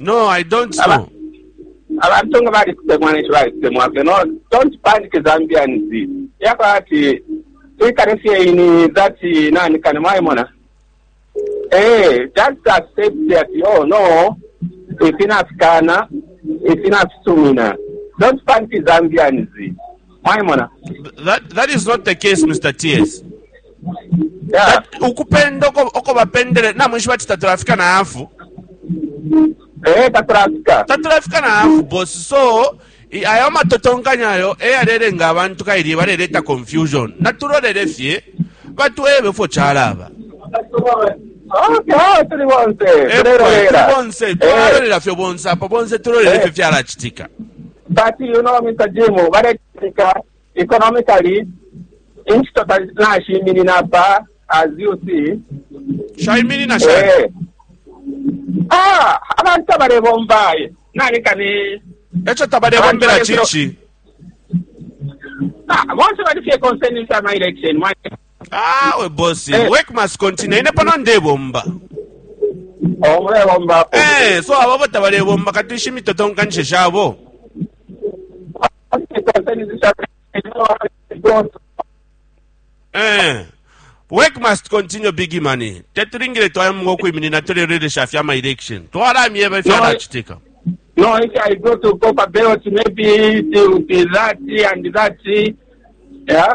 No, I don't Aba- know. abantu nga bali kutemwa nekyo bali kutemwa ffe no don't panic zambians yaba ati twikale fye ini that nani kani mwayimona eh just accept that oh no ifinafikana ifinafisumina don't panic zambians mwaimona that is not the case mr ts ukupenda oko bapendele namwishi bati tatulafika na hafu eh, tatulafika tatulafika na hafu bosi so ayo matotonkanya ayo eyalelenga abantu kaili baleleta confusion natulolele fye batwebe fo chalaba tuli bonse tulolera fyo bonse apo bonse tulolera fyo fyalachitika But you know, Mr. Jim, baletika economically inchito nashiminina apa as you see. Shaiminina shani? Eh. Ah, abantu abalebomba eh, naleka ni Echo tabalebombela chichi. Ah, bonse bali fye concerned with my election. awe bosi Eh. work must continue ine pano ndebomba Oh, mulebomba apo. Eh, so ababo tabalebomba kati shimitotonkanishe shabo Eh. work must continue big money tetulingile twayamunga okwiminina tulelolesha fya ama election twalamyeba ifyalachitika No, if I go to Copper Belt, maybe it will be that and that. Yeah.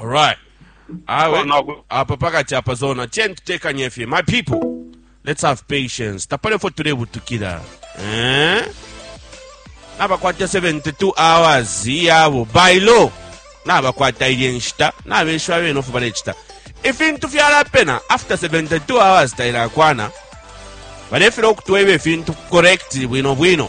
Alright. Awe, Oh, no. apa pakati apa zona chen tutekanye fye my people let's have patience tapale fo tulebutukira eh? nabakwata 72 hours yabo by law nabakwata ilye nshita nabeshiwa bene ofu balechita ifintu fyalapena after 72 hours tailakwana balefera okutweba ifintu correct bwino bwino